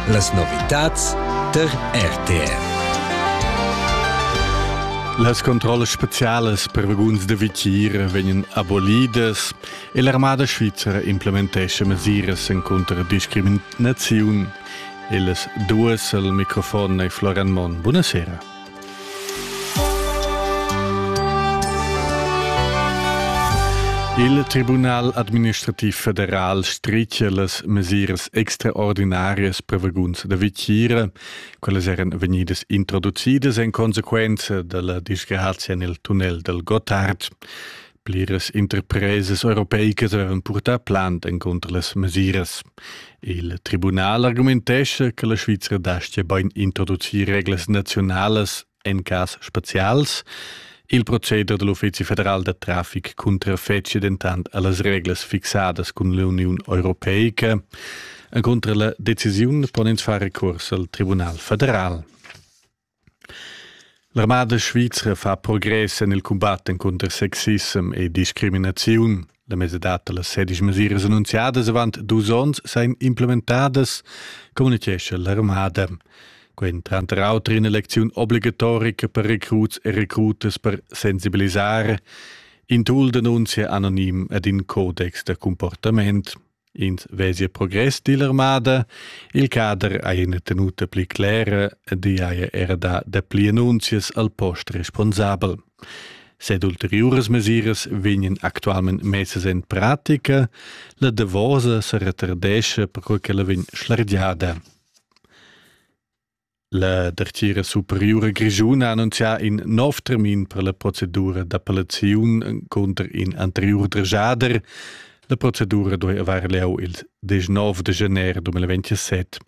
Las novitads der RTR. Las controllas specialas per vaguns da vitier vegnan abolidas e l'armada svizra implementescha mesiras encunter discriminaziun. Ellas duas al microfon e Floran Monn. Buonasera. Il Tribunal administrativ federal stricia las mesiras extraordinarias per vaguns da vitgira. Quellas eran vegnidas introducidas en conseguenza dalla disgrazia nel tunnel del Gottard. Pliras interpresas europeicas avevan purtà plant encunter las mesiras. Il tribunal argumentescha che la Svizra dastia bain introducir reglas naziunalas en cas spazials. Il proceder dell Uffizi federal da traffic cuntrafetschia dentant a las reglas fixadas cun l'Uniun Europeica. Encunter la decisiun pon ins far recurs al Tribunal federal. L'armada svizra fa progress en il cumbat encunter sexissem e discriminaziun. La mesadad da las sedisch mesiras annunziadas avant dus onns sain implementadas, communitgescha l'armada. Quel tranter auter in'elecziun obligatorica per recruts e recrutas per sensibilisare, in tool d'annunzia anonim ed in codex da comportament. Ins vesia progress dill'armada, il cader ha ina tenuta pli clera ed i haja era dà dapli annunzias al post responsabel. Sed ulteriuras mesiras vegnan actualment messas en pratica, la davosa sa retardescha perquai che la vegn schlargiada. La dartgira superiura grischuna ha annunzià in nov termin per la procedura d'appellaziun cunter in anteriur dregiader. La procedura duai avair lieu il 19 de januar 2027.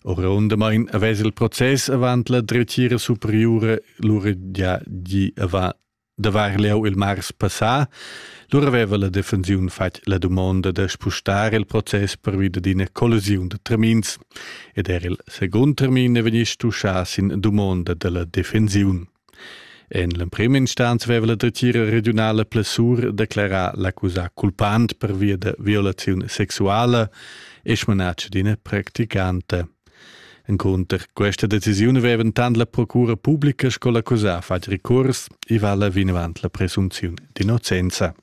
Orundamain avess il process avant la dretgira superiura lura gia gì avant d'avair lieu il mars passà, lura aveva la defensiun fatg la dumonda da spustar il process pervi d'ina collisiun da termins ed er il secund termin è vegnì stuschà sin dumonda da la defensiun. En l'emprima instanza aveva la dretgira regiunala Plessur declerà l'accusà culpant per via da violaziun sexuala e smanatsch d'ina practicanta. Encunter questa decisiun vevan tant la procura publica sco l'accusà fatg recurs e vala vinavant la presunziun d'innocenza.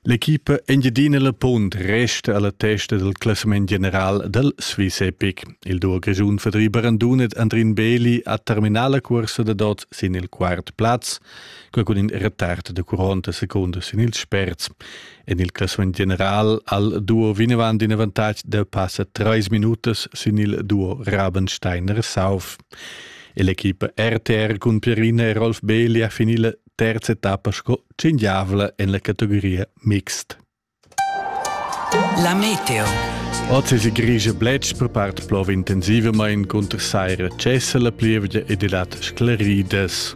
L'equipa Engiadina La Punt resta alla testa del classament general del Swiss Epic. Il duo grischun Fedri Barandunet Andrin Beli ha terminà la cursa da dot sin il quart plaz, quel cun in retard de 40 seconden sin il sperz. En il classament general al duo vinavant in avantatg da passa trais minutas sin il duo Rabensteiner-Sauf. L'equipa RTR cun Pierina e Rolf Beli ha finì la terza etappa sco cingiavla en la categoria mixt. La meteo. Oz è grigia bletsch per part plov intensivamain cunter saira cessa la plievgia ed i dat sclaridas.